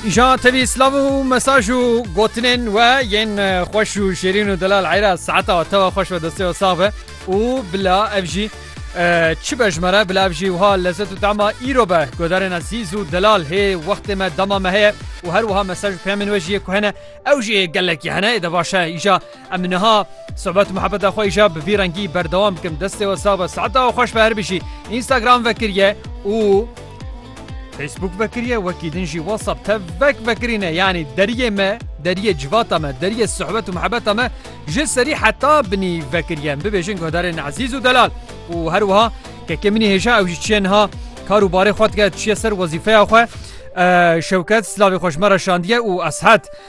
Îşa tevî slav û mesaj û gotinên we yên e, xweş û şêrîn û delal eyra saeta we tewa xweş ve destê we sax be û bila ev jî e, çi be ji me re bila ev jî wiha lezzet û tama îro be guhdarên ezîz û delal hê wextê me dema me heye û her wiha mesaj û peyamên we jî yê ku hene ew jî ê gelekî hene ê de baş e îşa Em niha sohbet û muhebeta xwe îşa bi vî rengî berdewam bikim. Destê we sax be, saeta we xweş be her bijî. Instagram vekiriye û Facebook vekiriye wekî din jî WhatsApp tevek vekirîne yanî deriyê me, deriyê civata me, deriyê sohbet û muhebeta me ji serî heta binî vekiriye. Em bibêjin guhdarên ezîz û delal û her wiha kekê min î hêja ew jî çiye niha kar û barê xwe dike çiye ser wezîfeya xwe. Şewket silavê xwe ji me re şandiye û ez het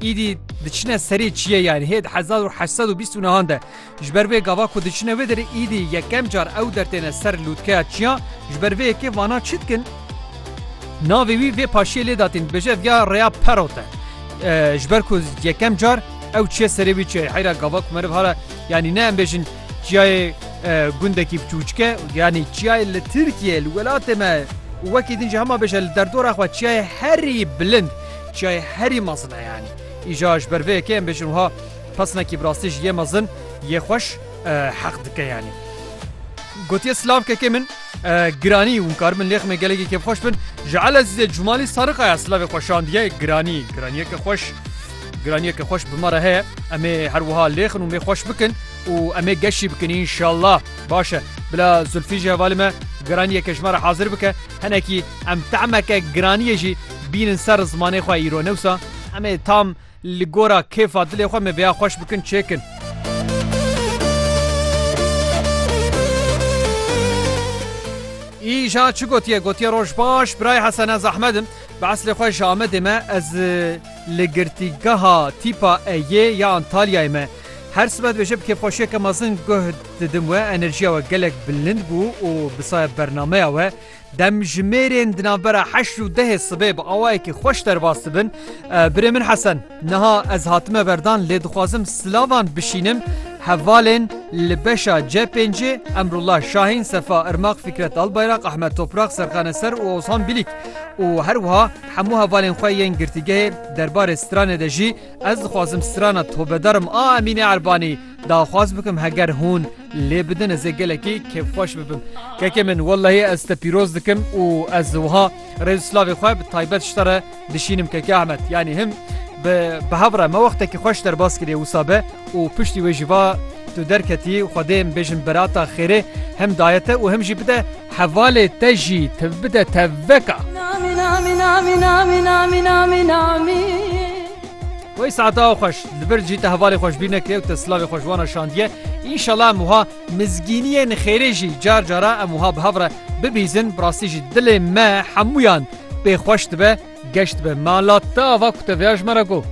Îdî diçine serê çiyê yani hê di hezar û heşt sed û bîst û nehan de. Ji ber vê gava ku diçine wê derê îdî yekem car ew dertêne ser lûtkeya çiyan ji ber vê yekê vana çi dikin? Navê wî vê paşiyê lê datîn dibêje ev ya rêya Perot e. Ee, Ji ber ku yekem car ew çiye serê wî çiye heyra gava ku meriv hala yanî ne em bêjin çiyayê e, gundekî biçûçke yanî çiyayê li Tirkiye li welatê me û wekî din jî hema bêje li derdora xwe çiyayê herî bilind Çiyayê herî mezin e yanî. Îja ji ber vê yekê em bêjin wiha pesinekî bi rastî jî yê mezin, yê xweş heq dike yanî. Gotiye slavkekê min Giranî hûn karibin lêximê gelekî kêfxweş bin. Ji Elezîzê Cûmalî Sarikaya silavê xwe şandiye Giranî. Giraniyeke xweş Giraniyeke xweş bi me re heye. Em ê her wiha lêxin û mêxweş bikin û em ê geşî bikin înşallah. Baş e. Bila Zulfî jî hevalê me giraniyeke ji me re hazir bike. Hinekî em tahmeke giraniyê jî bînin ser zimanê xwe îro ne wisa? Em ê tam li gora kêfa dilê xwe me vêya xweş bikin çêkin. Îja çi gotiye gotiye roj baş birayê Hesene zehmet in bi eslê xwe ji Amedê me ez li girtîgeha tîpa Eyê ya Antalyayê me. Her sibe dibêje bi kêfxweşiyeke mezin guh Didim we enerjiya we gelek bilind bû û bi saya bernameya we dem ji mêrên di navbera heşt û dehê sibê bi awayekî xweş derbas dibin. Birê min Hesen, niha ez hatime berdan lê dixwazim silavan bişînim hevalên li beşa C pêncê Emrullah Şahîn, Sefa Irmak, Fikret Albayrak, Ahmet Toprak, Serkan Eser û Ozhan Bilîk û her wiha hemû hevalên xwe yên girtîgehê derbarê stranê de jî ez dixwazim strana tobedarim a Emînê Erbanî Daxwaz bikim heger hûn lê bidin ez ê gelekî kêfxweş bibim. Kekê min wellehî ez te pîroz dikim û ez wiha rêz slavê xwe bi taybet ji te re dişînim Keke Ahmet. Yanî him bi bi hev re me wextekî xweş derbas kiriye wisa be û piştî wê jî va tu derketî Xwedê em bêjin berata xêrê him daye te û him jî bide hevalê te jî te bide tevveka. Wey saeta xweş li vir jî te hevalê xweşbîneke û te silavê xweşwana şandiye. Înşela em wiha mizgîniyên xêrê jî car cara em wiha bi hev re bibîzin. Bi rastî jî dilê me hemûyan pê xweş dibe, geş dibe. Me ala te ava ku te vêya ji me re got.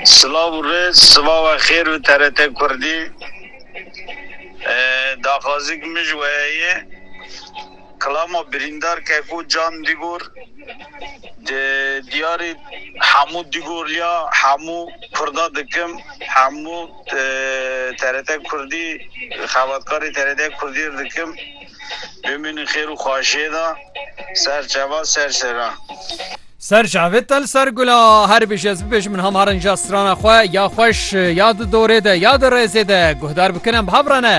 Silav û rêz, sivawa xêr bi TRT Kurdî. Daxwazî min ji we heye. Klama birîndar Keko Can Digor di diyarê Hemû Digorliya hemû Kurda dikim hemû TRT Kurdî xebatkarê TRT Kurdî ir dikim bimînin xêr û xwaşiyê de ser çavan ser şeran. Ser çavê te li ser gula her bêjî ez bibêjim min ham harin ja strana xwe ya xweş ya di dorê de ya di rêzê de guhdar bikin em bi hev re ne.